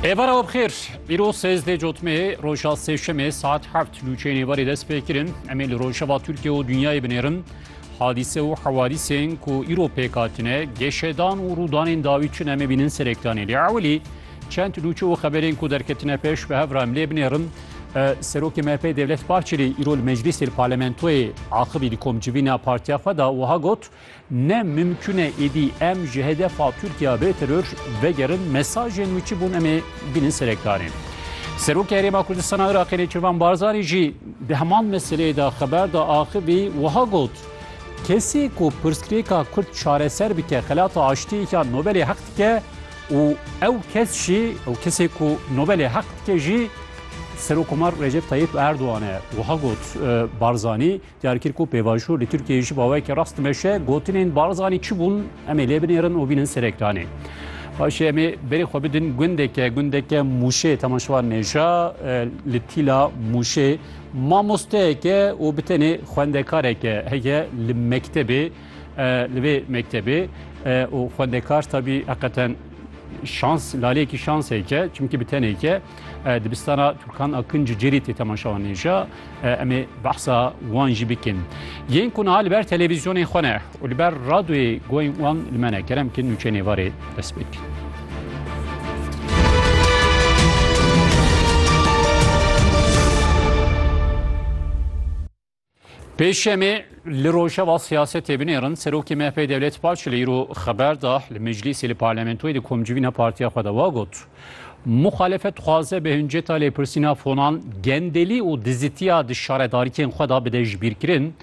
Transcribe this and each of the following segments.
Êvar ew bixêr îro sêzdê cotmê roja sêşemê saet heft lûçeyên êvarê dest pê kirin em ê li rojava Tirkiye û dinyayê binêrin hadîse û hewadîsên ku îro pêk hatine geşedan û rûdanên dawî çin em ê bînin serêkdanê lê ewilî çend lûçe û xeberên ku derketine pêş bi hev re em lê binêrin Serokê MHP Devlet Bahçelî îro li meclîsê li parlamentoyê axivî di komcivîna partiya xwe da wiha got Ne mimkun e êdî em ji hedefa Tirkiya bê teror vegerin mesajên wî çi bûn em ê bînin serê karê. Serokê Herêma Kurdistana Iraqê Nêçirvan Barzanî jî di heman meseleyê de xeber da axivî wiha got, Kesê ku pirsgirêka Kurd çareser bike xelata aştiyê ya Nobelê heq dike û ew kes jî ew kesê ku Nobelê heq dike jî Serokkomar Recep Tayyîp Erdogan e. Wiha got Barzanî. Diyar kir ku pêvajo li Tirkiyeyê ji bawekî rast dimeşe, gotinên Barzanî çi bûn em ê lê binêrin û bînin ser ekranê. Paşê em ê berê xwe bidin gundeke gundeke Mûşê temaşevan nêja li tîla Mûşê mamosteyeke û bi tenê xwendekareke heye li mektebê li vê mektebê û xwendekar tabî heqeten şans laleyekî şanseke çimkî bi tenêke Dibistana Turkan Akın Cüceri tê temaşawa nêja em ê behsa wan jî bikin. Yên ku niha li ber televîzyonên xwe ne û li ber radyoyê goyên wan li me ne kerem ki nûçe nêvarê dest pê bikin. Pêşemê li rojeva siyasetê binêrin serokê MHP'ê Devlet Baş li îro xeber da li meclîsê li parlamentoyê di komcivîna partiya xwe de wa got. Muxalefet dixwaze bi hinceta lêpirsîna fonan gendelî û dizitiya di şaredarîkên xwe da bide ji bîrkirin.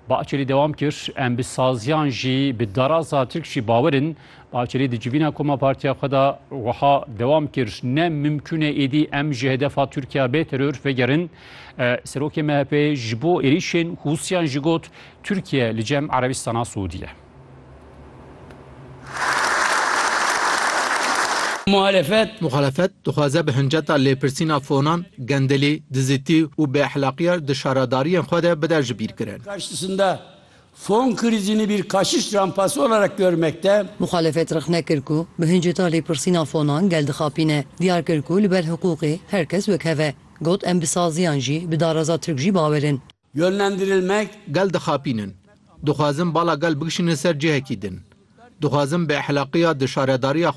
Bahçelî dewam kir, em bi saziyan jî bi daraza Tirk jî bawer in Bahçelî di civîna koma partiya xwe de wiha dewam kir, Ne mimkûn e êdî em ji hedefa Tirkiya bê teror vegerin. Serokê MHP'ê ji bo êrîşên Hûsiyan jî got, Tirkiye li cem Erebistana Siûdî ye. Muhalefet Muhalefet dixwaze bi hinceta lêpirsîna fonan, gendelî, dizitî û bêexlaqîya di şaradarîyên xwe de bide jibîrkirin. karşısında Fon krizi ne bir kaçış rampası olarak görmekte. Muxalefet rexne kir ku bi hinceta lêpirsîna fonan gel dixapîne. Diyar kir ku li ber hiqûqê her kes wekhev e. Got em bi saziyan jî bi dareza Tirk jî bawer in. Yönlendirilmek. Gel dixapînin. Dixwazin bala gel bikişînin ser cihekî din. Dixwazin bi ehlaqiya di şaredariya